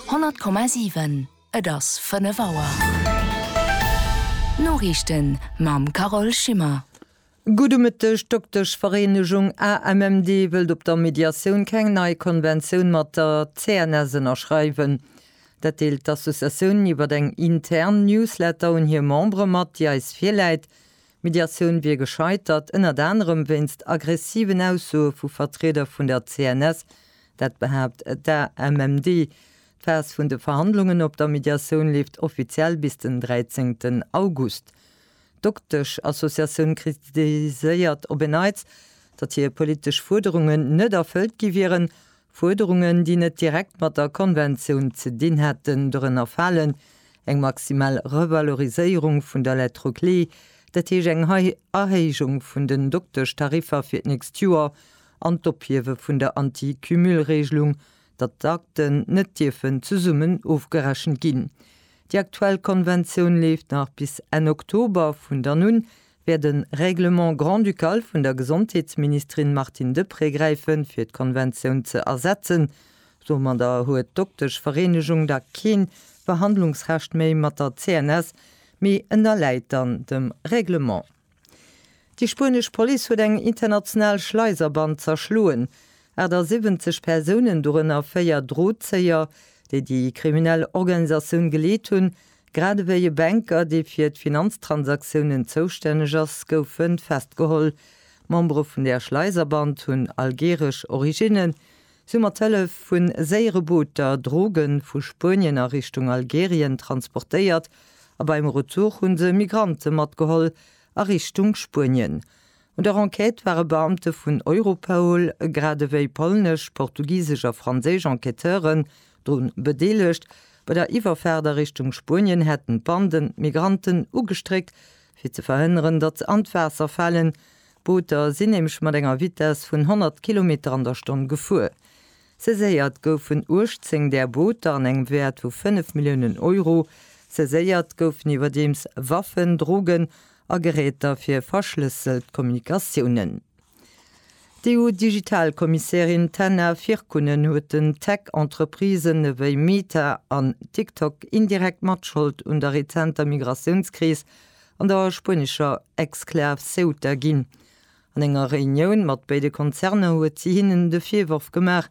100,7 Et ass 5 Auer. D'Noriichten mam Carole Schimmer. Gudde Mëtteg, D'Dokteschvereenegung AMMD wëllt op der Mediatioun keng nei Konventioun mat der CNS ënnerschreiwen. Dat deelt d'Associatioun iwwer eng intern Newsletter un hir Membere mat, déi eis virläit. D'Mediatioun wier gescheitert, ënnert anerem wéinst aggressiven Aussoe vu Vertrieder vun der CNS, dat behaapt d'AMMD. D'Phas vun de Verhandlungen op der Mediatioun leeft offiziell bis den 13 August. D'Dokteschassociatioun kritiséiert op en Neits, datt hir politesch Fuerderungen net erfëllt gi wieren, Fuerderungen, déi net direkt mat der Konventioun ze dinn hätten, dorënner falen eng maximal Revaloriséierung vun der Lettre clé, dat heescht eng Erhéijung vun den Dokteschtariffer fir d'nächst Joer, an d'Ophiewe vun der Anti-Cumul-Reegelung, datt d'Akten net dierfen zesummen ofgerechent ginn. Déi aktuell Konventioun leeft nach bis Enn Oktober, vun dann un wäert e Règlement grand-ducal vun der Gesondheetsministerin Martine Deprez gräifen, fir d'Konventioun ze ersetzen. Domadder huet d'Dokteschvereenegung da keen Verhandlungsrecht méi mat der CNS, mee ënnerläit dann dem Règlement. Déi spuenesch Police huet eng international Schleiserband zerschloen. 78 Persounen, dorënner véier Drozéier, déi déi kriminell Organisatioun geleet hunn, Grad ewéi e Banker, dee fir d'Finanztransaktiounen zoustänneg ass, gouf e festgeholl. Membere vun der Schleiserband hunn algeeresch Originnen. Si hu mat Hëllef vu séiere Booter Droge vu Spuenien a Richtung Algerien transportéiert a beim Retour hu se Migrante matgeholl a Richtung Spuenien. Un der Enquête ware Beamte vun Europol grad ewéi polnesch, portugisesch a franséisch Enquêteuren Drun bedeelegt. Bei der Iwwerfaart a Richtung Spuenien hätten d'Banden d'Migranten ugestréckt, fir ze verhënneren, datt se an d'Waasser falen. D'Booter sinn nämlech mat enger Vitess vun 100 Kilometer an der Stonn gefuer. Saiséiert goufen 18 där Booter an engem Wäert vu 5 Milliounen Euro. Saiséiert goufen iwwerdeems Waffen, Drogen a Geräter fir verschlësselt Kommunikatiounen. D'EU-Digital-Kommissärin Taina Virkkunen huet den Tech-Entreprisen ewéi Meta an TikTok indirekt Matschold un der rezenter Migratiounskris an der spuenescher Exklav Ceuta ginn. An enger Reunioun mat béide Konzerner huet si hinnen de Virworf gemaach,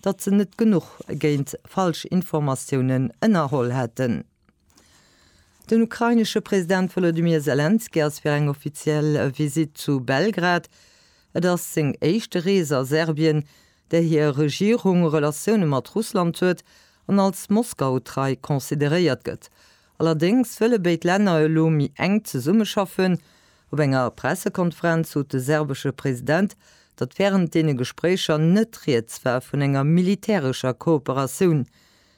datt se net genuch géint Falschinformatiounen ënnerholl hätten. Den ukrainesche President Wolodymyr Selenskyj ass fir eng offiziell Visitt zu Belgrad. Et ass seng éischte Rees a Serbien, där hir Regierung Relatioune mat Russland huet an als Moskau-trei consideréiert gëtt. Allerdéngs wëlle béid Länner elo méi enk zesummeschaffen. Op enger Pressekonferenz sot de serbesche President, datt wärend deene Gespréicher net rieds war vun enger militärescher Kooperatioun.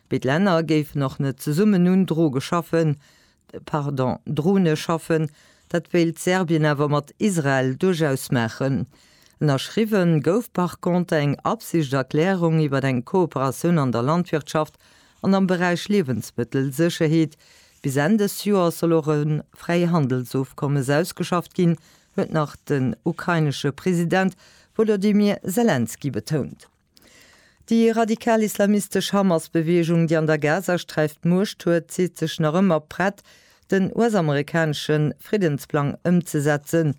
Béd Länner géifen och net zesummen un Droge schaffen, pardon, Drone schaffen, dat wéilt Serbien awer mat Israel duerchaus maachen. Ënnerschriwwe gouf par contre eng Absichterklärung iwwer eng Kooperatioun an der Landwirtschaft an am Beräich Liewensmëttelsécherheet. Bis Enn dës Joers soll och e Fräihandelsofkommes ausgeschafft ginn, huet nach den ukrainesche President Wolodymyr Selenskyj betount. Déi radikal-islamistesch Hamas-Beweegung, déi an der Gazasträif d'Muecht huet, seet sech nach ëmmer prett, den US-amerikanesche Friddensplang ëmzesetzen.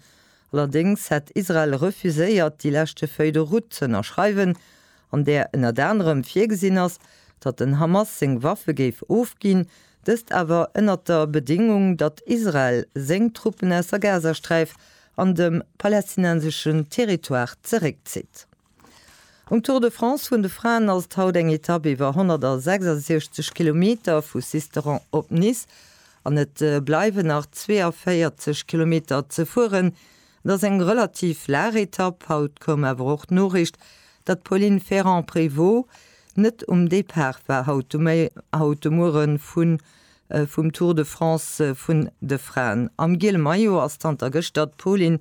Allerdéngs hätt Israel refuséiert, déi leschte Feuille de route ze ënnerschreiwen, an där ënnert anerem virgesinn ass, datt den Hamas seng Waffe géif ofginn, dëst awer ënnert der Bedéngung, datt Israel seng Truppen aus der Gazasträif an de palästinenseschen Territoire zeréckzitt. Um Tour de France vun de Fraen ass et haut eng Etapp iwwer 166 Kilometer vu Sisteron op Nice an et bleiwen nach 42 Kilometer ze fueren. Et ass eng relativ laach Etapp. Haut koum awer och d'Noriicht, datt d'Pauline Ferrand-Prévot net um Depart war haut de Muere vum Tour de France vun de Fraen. Am giele Maillot ass zanter gëschter d'Pauline